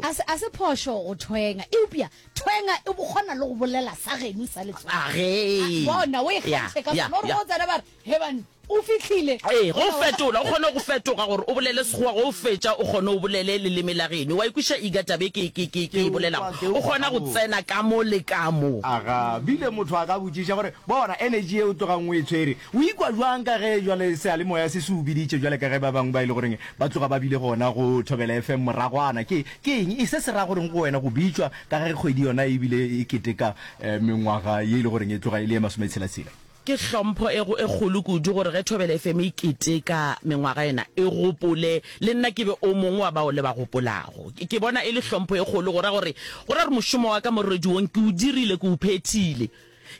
A se, a se phošo go thwenga. Eupša thwenga e kgona le go bolela sa geno sa letswalo. A ge e. A, bona, o e Ya, kgantšhe ka ya, gona. O re ya. go tsena ba re, He banna, o fihlile. Ee, go Bona, fetola. O kgona go fetoga gore o bolele Sekgowa, ge o fetša o kgone o bolele leleme la geno. Wa e kweša Iga taba e ke, ke, ke, ke e bolelago? Ke utlwa, ke O kgona go utlwa, gabotse. tsena ka mo le ka mo. A ga bile motho a ka botšiša gore, Bona, energy yeo o tlogang o e tshwere, O ikwa bjang ka ge bjale seyalemoya se se o biditše bjale ka ge ba bangwe ba e le goreng ba tloga ba bile gona go Thobela FM moragwana? Ke, ke eng e se se ra goreng go wena go bitšwa ka ge kgwedi yona e bile e keteka mengwaga ye e le goreng e tloga e le ye masometshela-tshela? Ke hlompho e, e kgolo kudu gore ge Thobela FM e keteka mengwaga yena e gopole le nna ke be o mongwe wa bao le ba gopolago. Ke bona e le hlompho e kgolo go ra gore, go ra gore mošomo wa ka mo radiong ke o dirile, ke o phethile.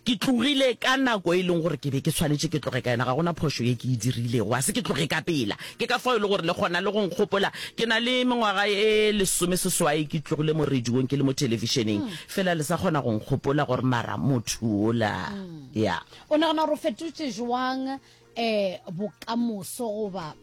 Ke tlogile ka nako e leng gore ke be ke swanetše ke tloge ka yona. Ga go na phošo ye ke e dirilego. A se ke tloge ka pela. Ke ka fao e le gore le kgona le go nkgopola. Ke na le mengwaga e lesomeseswai ke tlogile mo radiong ke le mo thelebišeneng. Fela le sa kgona go nkgopola gore mara motho wola. Ya. O nagana gore o fetotše bjang eh bokamoso goba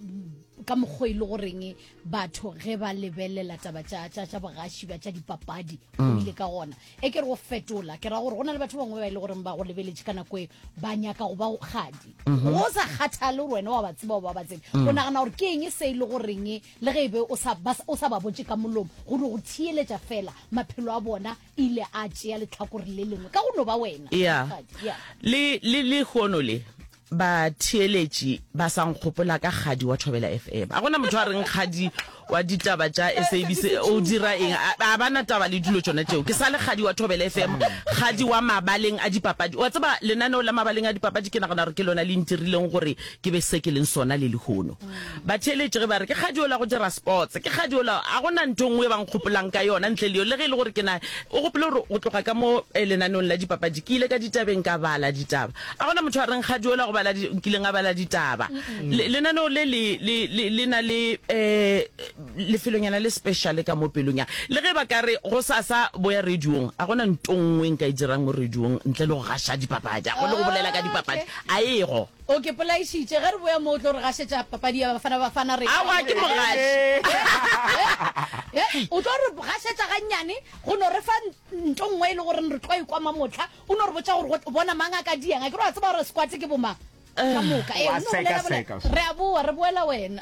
ka mokgwa e le goreng batho ge ba lebelela taba tša tša tša bogaši ba tša dipapadi o ile ka gona e ke re go fetola ke ra gore go na le batho bangwe ba e le goreng ba go lebeletše ka nako e ba nyaka go ba go kgadi go sa kgathale gore wena wa ba tseba ba ba tsebe o nagana gore ke eng se e le goreng le ge e be o sa ba o sa ba botše ka molomo gore go theeletša fela maphelo a bona ile a tšea letlhakore le lengwe ka go no ba wena ya Rakgadi, ya. le le le hono le batheeletši ba sa nkgopola ka kgadi wa thobela fm a gona motho a reng kgadi wa ditaba tša sabc o dira eng a a ba na taba le dilo tšona tšeo ke sa le kgadi wa thobela fm kgadi wa mabaleng a dipapadi wa tseba lenaneo la mabaleng a dipapadi ke nagana gore ke lona le ntirileng gore ke be se ke leng sona le lehono Batheeletši ge ba re, Ke kgadi ola go dira sports, ke kgadi ola, a go na ntho nngwe e ba nkgopolang ka yona ntle le yo. Le ge e le gore ke na, o gopole gore go tloga ka mo eh, lenaneong la dipapadi, ke ile ka ditabeng ka bala ditaba. A go na motho a reng kgadi ola go bala, di, nkileng a bala ditaba. Le, lenaneo le le, le, le, le na le eh, lefelonyana le special ka mo pelong ya. Le ge ba ka re go sasa boya radiong, a go na ntho nngwe e nka e dirang mo radiong ntle le go gaša dipapadi. A go le go bolela ka dipapadi, a ego. O ke polaišitše, ge re boya mo o tlo re gašetša papadi ya Bafana Bafana re. Aowa ke mo gaše. He, o tlo re gašetša gannyane go no re fa nto nngwe e le goreng re tlo e kwa mamohla, o no re botša gore go bona mang a ka diang, akere wa tseba gore squat ke bomang ka moka. Ee, o no bolela bolela, re a boa re boela wena.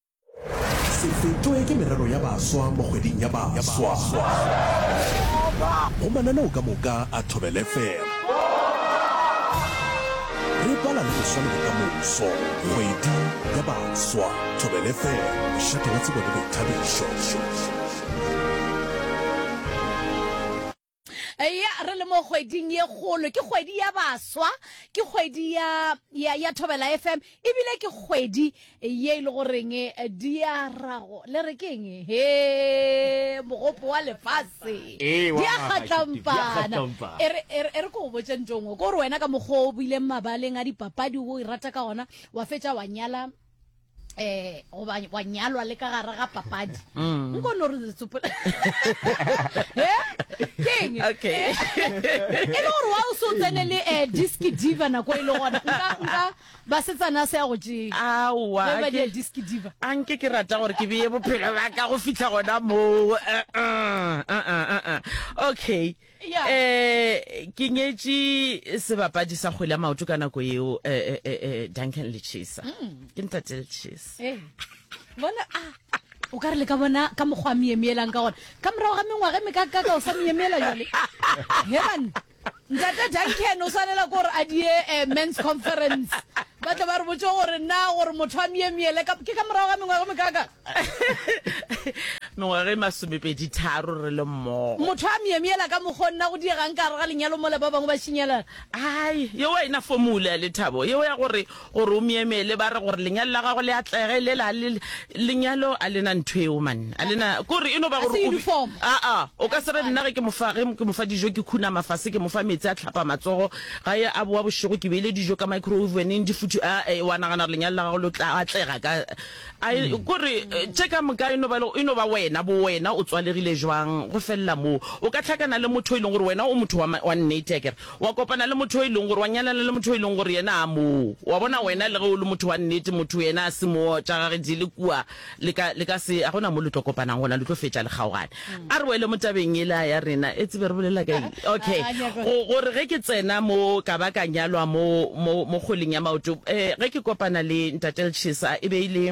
Se fetšwe ke merero ya baswa mo kgweding ya baswa go mananeo ka moka a Thobela FM. Re bala le boswa le bokamoso, kgwedi ya baswa, Thobela FM, mošate wa tsebo le boithabišo. ya re le mo kgweding ye kgolo ke kgwedi ya baswa ke kgwedi ya ya ya thobela fm ebile ke kgwedi ye e le goreng eh, diarago le re ke eng he mogopo wa lefase Ee, wa di a magašo, kgatlampana diakgatlampana. e re- e re e re ko go botse ntongwe ko gore wena ka mokgwa o buileng mabaleng a dipapadi o e rata ka gona wa fetša wa nyala eh goba wa nyalwa le ka gare ga papadi mm. nko no re letsopola eh? keng okay e le gore wa o so tsene le eh disc diva nako e le gona nka nka ba setsana se ya go tšeng awa ba di disc diva a nke ke rata gore ke beye bophelo ba ka go fitlha gona mo eh, eh, okay um ke nyetše sebapadi sa kgwele ya maoto ka nako eo eh, eh, eh, eh, duncan lechesa mm. ke ntate lechesa eh, bona a ah, o ka re le ka bona ka mokgwa a miemeelang ka gona ka morago ga mengwaga e mekakaka o sa miemeela jale heban ntate duncan o swanela ko gore a die eh, mans conference ba tla ba re botse gore na gore motho a miemeele ke ka morago ga mengwaga mekakaka mengwaga e masomepedi tharo re le mmogo motho a myemyela ka mokgwa o nna go diegang ka gare ga lenyalo mola ba bangwe ba šinyalana ai yeo a ena fomula ya lethabo yeo ya gore gore o myemele ba re gore lenyalo la gago le atlege le la le lenyalo a lena ntho eo man a lena kore e no ba gore aa o ka se re nna ge ke mofa ge ke mofa dijo ke khuna mafase ke mofa metsi a tlhapa matsogo ga ye a boa bošego ke beile dijo ka microwave weneng di futhi a wa nagana gore lenyalo la gago lo tla atlega ka A e mm. kore eh, tše ka moka e no ba e no ba wena bo wena o tswalegile jwang go felela moo o ka tlhakana le motho e leng gore wena o motho wa wa nnete ya kere wa kopana le motho e leng gore wa nyalana le motho e leng gore yena a moo wa bona wena le ge o le motho wa nnete motho yena a se moo tša gage di le kua le ka le ka se a gona mo le tlo kopanang gona le tlo fetša le kgaogane A re wele mo tabeng yela ya rena. E tsebe re bolela ka eng? Okay. Go, gore ge ke tsena mo ka ba ka nyalwa mo, mo, mo kgweleng ya maoto, eh, ge ke kopana le Ntate Lchesa, e be e le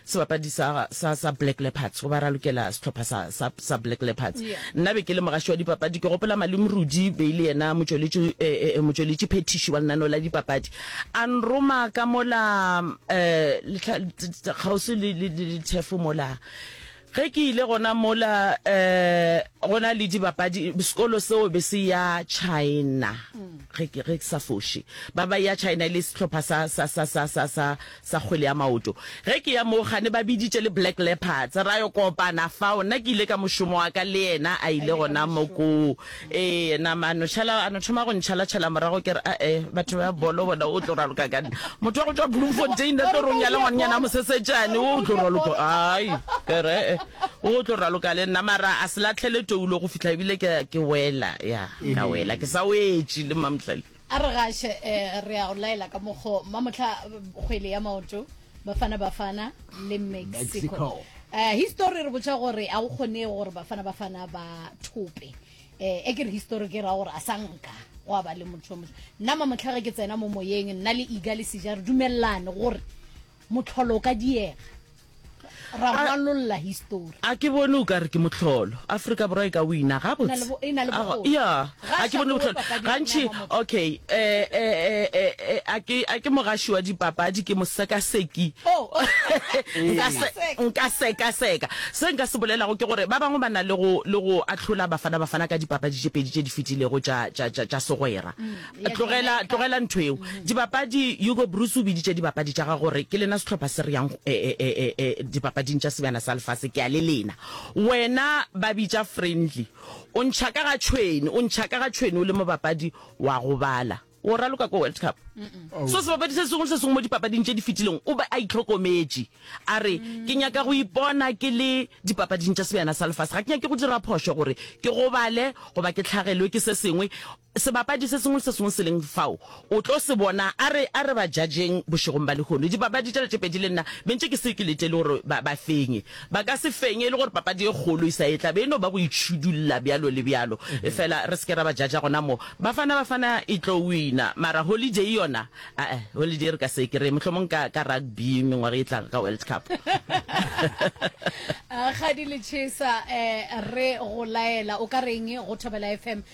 sebapadi sa, sa, sa Black Leopards, goba ra lokela sehlopha sa, sa, sa Black Leopards. Yeah. Nna be ke le mogaši wa dipapadi, ke gopola Malome Rudi be e le yena motšweletši, eh, eh, motšweletši phethiši wa lenaneo la dipapadi. A nroma ka mola, eh, lehla, t, t, kgauswi le, le, le, le thefo mola. Ge ke ile gona mola go na le dibapadi, sekolo seo be se ya China ge ke ge ke sa foše, ba ba ya China e le sehlopha sa sa sa sa sa sa sa kgwele ya maoto. Ge ke ya moo gane ba biditše le Black Leopards ra yo kopana fao. Nna ke ile ka mošomo wa ka le yena a ile gona mo koo. Ee, nama a no šala, a no thoma go ntšhalatšhala morago ke re ae batho ba bolo bona o tlo raloka ka nna motho wa go tšwa bloemfontein a tlo rong ya le ngwananyana mosesetšane o tlo raloka ai ke re ee o tlo raloka le nna mara a se latlhele toulo go fitlha ebile ke ke wela ya ka wela ke sa wetše le mamohlale A re gaše, eh, re a o laela ka mokgo mamohla kgwele ya maoto Bafana Bafana le Mexico. Eh, history re botša gore a o kgone gore Bafana Bafana ba thope. Eh, e ke re history ke ra gore a sa nka gwa ba le motho yo motho. Nna mamohla ge ke tsena mo moyeng nna le Iga le Sija re dumelelane gore Mohlolo o ka diega. Ra ngwalolla histori. A ke bone o ka re ke mohlolo. Afrika Borwa e ka wina gabotse. E na le bokgoni. Ya, a ke bone bohlolo. Gantši, okay, a ke mogaši wa dipapadi, ke mosekaseki. Nka sekaseka. Se nka se bolelago ke gore ba bangwe ba na le go ahlola Bafana Bafana ka dipapadi tše pedi tše di fetilego tša segwera. Tlogela, tlogela ntho eo. Dibapadi, Hugo Broos o biditše dibapadi tša ga gore ke lena sehlopha se re yang eh, eh, eh, eh, eh, dipapading tša sebjana sa lefase, ke a le lena. Wena ba bitša friendly, o ntšha ka ga tšhwene, o ntšha ka ga tšhwene o le mobapadi wa go bala. O raloka ko World Cup. So sebapadi se sengwe le se sengwe mo dipapading tše di fetileng o ba a itlhokometše a re ke nyaka go ipona ke le dipapading tša sebjana sa lefase ga ke nyake go dira phošo gore ke gobale goba ke tlhagelwe ke se sengwe Sebapadi se sengwe le se sengwe se leng fao o tlo se bona. A re, a re ba judgeng bošegong ba lehono. Dipapadi tšela tše pedi le nna be ntše ke se ke letele gore ba, ba fenye. Ba ka se fenye e le gore papadi e kgolo e sa e tla. Be e no ba go itšhidulla bjalo le bjalo. Efela re se ke ra ba judger gona moo. Bafana, Bafana e tlo wina. Mara Holiday yona, a-a, Holiday re ka se e kry-e. Mohlomong ka, ka rugby mengwaga e tlang ka World Cup. Kgadi Lechesa, eh, re go laela. O ka reng go Thobela FM?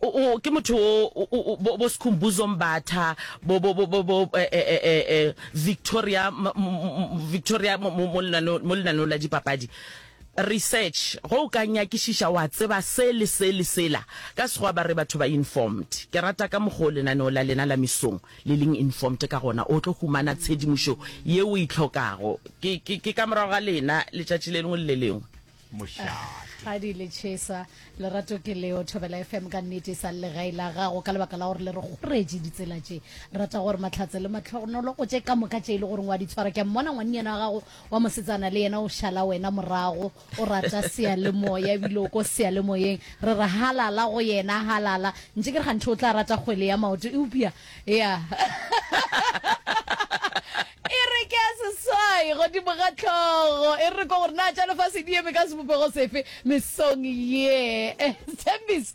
O, o, ke motho wo, o, o, o, bo, bo Sikhumbuzo Mbatha, bo, bo, bo, bo, bo eh, eh, eh, eh, eh, Victoria, m, m, m, Victoria mo, mo, mo lenaneo- mo lenaneong la dipapadi. Research, ge o ka nyakišiša wa tseba se le se le sela. Ka Sekgowa ba re batho ba informed. Ke rata ka mokgwa o lenaneo la lena la mesong le leng informed ka gona. O tlo humana tshedimošo ye o e hlokago. Ke, ke, ke ka morago ga lena letšatši le lengwe le le lengwe. mošate gadi le chesa lerato ke leo thobela fm ka nnete e sa le gai la gago ka lebaka la gore le re kgoretše ditsela tše rata gore matlhatse le matlhogonolo go tše ka moka tše e le goreng wa di tshwara ke a mmona ngwannyana wa gago wa mosetsana le yena o šala wena morago o rata seyalemoya ebile o ko seyalemoyeng re re halala go yena halala ntse ke re ganthe o tla rata kgwele ya maoto eupša ya E re ke a seswai godimo ga hlogo. E re ko gore na tša lefase di eme ka sebopego sefe mesong ye. Sthembiso.